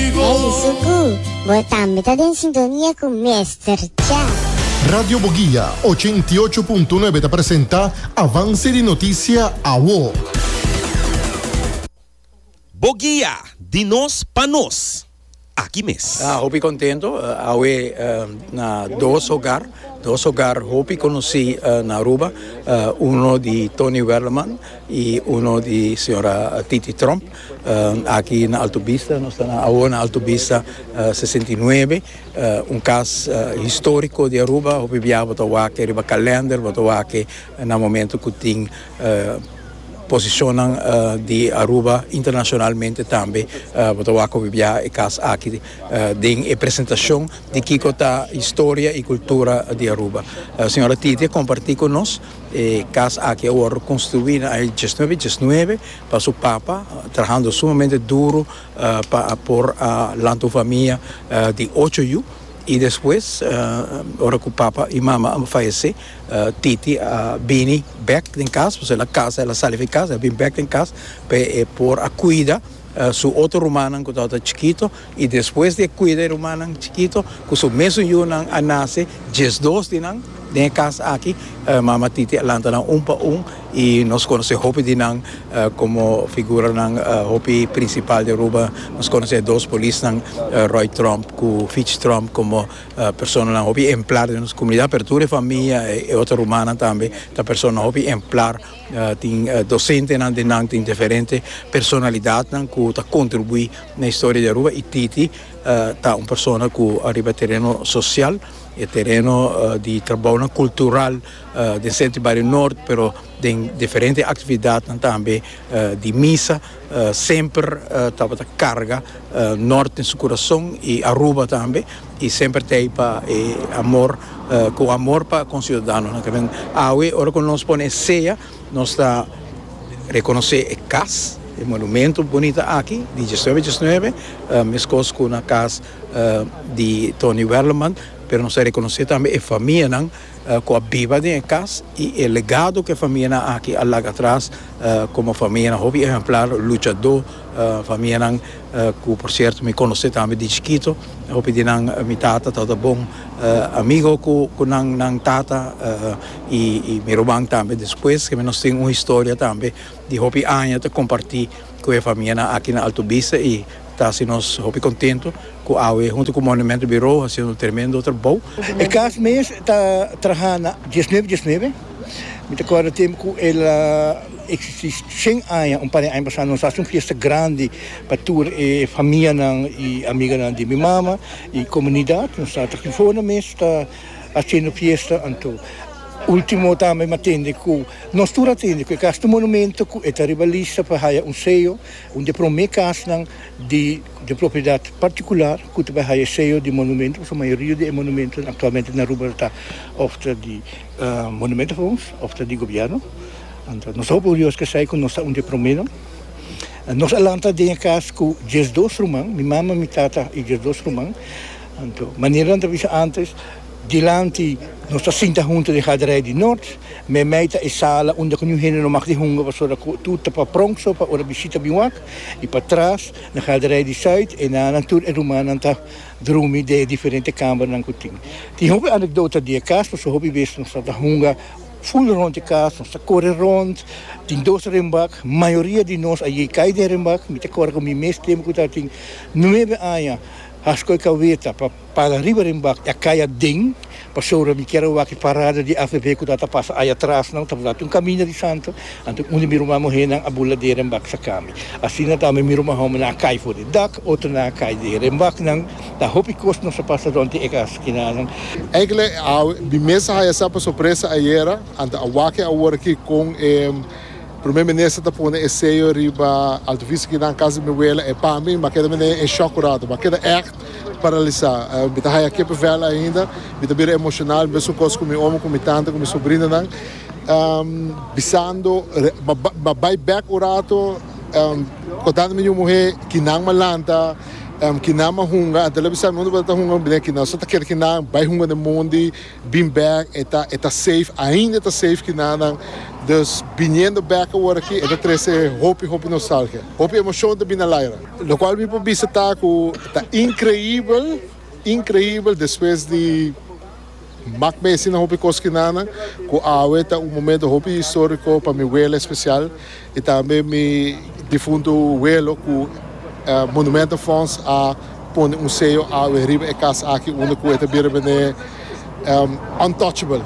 Ai di Suku, bo tambe ta den sintonia ku Mester Cha. Radio Boguia ochenta i ocho punto nuebe ta presenta Avance di Noticia Awo. Boguia, di nos pa nos, aki mes. Hopi contento awe na dos hogar, dos hogar hopi conoci na Aruba, uno di Tony Werleman y uno di señora Titi Tromp. Aki na Alto Bista, nos ta na awo na Alto Bista sesenta i nuebe, un kas historiko di Aruba, hopi bia bo ta wak riba kalender, bo ta wak na momento ku tin posishonnan di Aruba internashonalmente tambe, bo ta wak hopi bia e kas aki den e presentashon di kiko ta historia i kultura di Aruba. Señora Titia komparti ku nos e kas aki a wòrdu konstruí na aña dies nuebe dies nuebe, Pa su papa, trahando sumamente duro pa a por a lanta un famia di ocho yu, i despues ora ku papa i mama a fayesé, Titi a bini bèk den kas, pasobra el a kasa, el a sali fi kas, el a bini bèk den kas pa e por a kuida su otro rumannan ku tabata chikito. I despues di e kuida e rumannan chikito ku su mesun yunan a nase, diesdos di nan den e kas aki, Mama Titi a lanta nan un pa un i nos konosé hopi di nan komo figuranan hopi prinsipal di Aruba. Nos konosé e dos polisnan Roy Tromp ku Fitch Tromp komo personanan hopi emplar den nos komunidat, pero tur e famia, e otro rumannan tambe ta personanan hopi emplar. Tin dosentenan di nan tin diferente personalidadnan ku ta kontribuí na historia di Aruba i Titi ta un persona ku ariba e tereno sosial, e tereno di trabounan kultural den sèntro i bario nort, pero den diferente aktividatnan tambe di misa. Semper tabata carga Norte en su curason y Aruba tambe y semper te ahi pa e amor cu amor pa conciudadanonan ta bien. Awe ora cu nos pone e sea nos ta reconoce e cas, e monumento bunita aki di diecinuebe diecinuebe mescos cu na cas di Tony Werleman pero nos ta reconoce tambe e famianan. ku a biba den e kas i e legado ku e famianan aki a laga atras komo famianan hopi ehemplar, luchadó famianan ku por sierto mi konosé tambe di chikito hopi di nan mi tata tabata bon amigo ku nan nan tata i mi ruman tambe despues ke mi nos tin un historia tambe di hopi aña ta kompartí. ku e famianan aki na Alto Vista i ta hasi nos hopi kontentu ku awe huntu ku Monumento Birou hasi un tremendo trabou. E kas mes ta traha na diesnuebe diesnuebe. Mi ta kòrda tempu ku el a eksistí shen aña. Un par di aña pasá nos hasi un fiesta grandi pa tur e famianan i amiganan di mi mama i komunidat. Nos tabata aki for nos mes ta Haciendo fiesta anto. Ultimo tambe m'a tende cu nos tur a tende cu e cas di monumento cu e ta riba lista pa haya un sello, un di e prome casnan di di propiedad particular cu ta bay haya e sello di monumento pasobra mayoria di e monumentonan actualmente na Aruba ta of ta di Monumentenfonds of ta di Gobierno. Anto nos ta hopi orioso casey cu nos ta un di e promenan. Nos a lanta den e cas cu diesdos ruman, mi mama, mi tata y diesdos ruman. Anto, manera nan ta bisa antes, dilanti nos ta sinta huntu den haderai di North. Meimei ta e sala unda ku niun hende no mag di hunga pasobra ku tur ta pa pront so pa ora bishita bin wak. I pa tras, na haderai di Zuid, e nannan, tur e rumannan ta drumi den e diferente kambernan ku tin. Tin hopi anekdota di e kas pasobra hopi bes nos ta hunga ful rond e kas, nos ta kore rond. Tin dos renbak, mayoria di nos a yei kai den renbak. Mi ta kòrda ku mi mes tempu ku ta tin nuebe aña. Hasko e kaweta pa para riba den bak i a kai aden, pasobra mi kier awak e parada di ACV ku ta ta pasa aya tras nan, ta botá tur un kaminda di santo, anto un di mi ruman muhénan a bula dera den bak saka mi. Asina ta ami mi ruman hómbernan a kai for di dak, otronan a kai dera den bak nan, ta hopi kos nos a pasa rònt di e kas kinanan. Enkele awe mi mes a haya sa pa sorpresa ayera, anto a wak e awor aki kon e. Primer minister ta pone e sello riba Alto Vista kinan casa di mi abuela e pa mi mi a keda mi den e shock un rato mi a keda echt paralisa mi ta haya kipe vel ainda mi ta bira emocional mesun cos cu mi omo cu mi tante cu mi sobrinanan bisando mi a bay bek un rato contando mi yu muhe kinan mi a lanta kinan mi a hunga antes mi a bisa mi no tabata hunga mi a bini aki no so ta keda kinan bay hunga den mondi. Bin bèk e ta e ta safe ainda e ta safe ki nannan dus biniendo bèk awor aki e ta trese hopi hopi nostalgia hopi emoshon ta bini alaira lo kual mi por bisa ta ku ta inkreibel inkreibel despues di mak mesi na hopi kos ki nannan ku awe ta un momento hopi istoriko pa mi wele espesial I tambe mi difuntu welo ku Monumento Fonds a pone un seyo awe riba e kas aki unda ku e ta bira bend'é untouchable.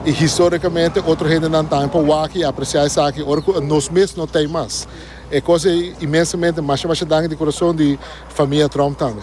I historikamente otro hendenan tambe por wak i apresiá esaki ora ku nos mes no ta ei mas. E kos ei inmensamente. Masha masha danki di kurason di famia Tromp tambe.